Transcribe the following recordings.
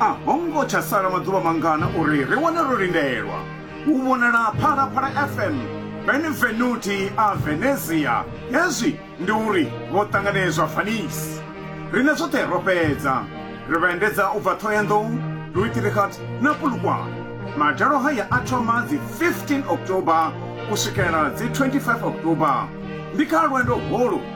a ho ngo tsha sala maḓuvha mangana uri ri wane ro lindelwa u vhonala phalaphala fm benevenuti a venezia hezwi ndi uri vho ṱanganedzwa vanisi rine zwoṱhe ro fhedza ri vha endedza u bva thohoyandou luitirikhat na pulukwane madalo haya a thoma dzi 15 october u swikela dzi 25 october ndi kha lwendo holu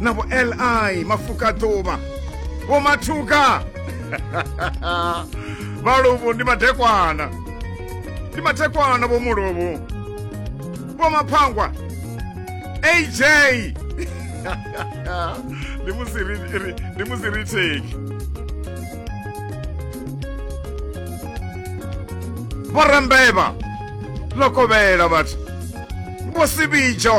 na vho li mafuka ḓuvha vho mathuka vhaluvhu ndi madekwana ndi madekwana vho muluvhu vho maphangwa aj ndi musi ri ri- ndi musi ri theki vho rembeva ḽo kovhela vhathu vho sivhidzho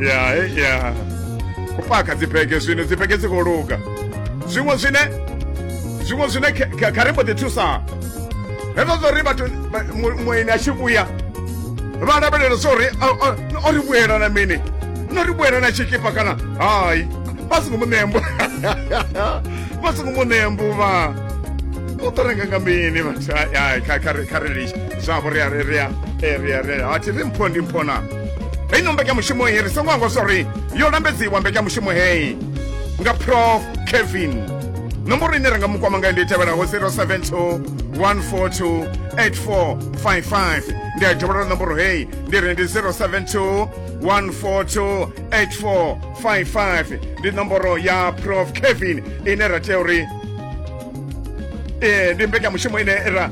ya eh, ya u paka dzibege zwino dzibege dzi khou luga zwiṅwe zwine zwiṅwe zwine kha ri mbo ḓi thusa hezwo zwo ri vhathu mueni a tshi vhuya vha lavhelela zwo ri o ri vhuyela na mini no ri vhuyela na tshikipa kana hayi vha songo mu ṋea mbu vha songo mu ṋea mbuvha u ḓo renga nga mini vhathu kha ri litsha zwavho ri a ri ri a eh, ri a ri a thi ri mpho ndi mpho na heyi no mbekanyamushumo heyi ri songo angwa zwa uri yo lambedziwa mbekanyamushumo heyi nga prof kevin nomboro ine ra nga mu kwama ngayo ndi i tevhelaho 072 142 8455 ndi a dovholola nomboro heyi ndi ri ndi 072 142 8455 ndi nomboro ya prof kevin ine ra tea uri ee ndi mbekanyamushumo ine ra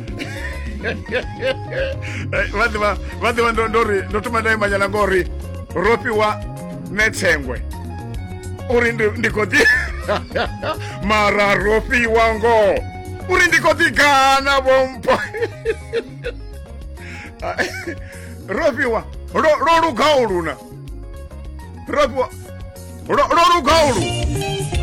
vhaḓivha vhaḓivha ndo ndo ri ndo thoma ndae manyana ngori ro fhiwa netsengwe uri ndi ndi khou ḓi mara ro fhiwa ngoho uri ndi khou ḓi gana vhompho ro fhiwa lo lo lugaho luna ro fhiwa lo lo lugaho luna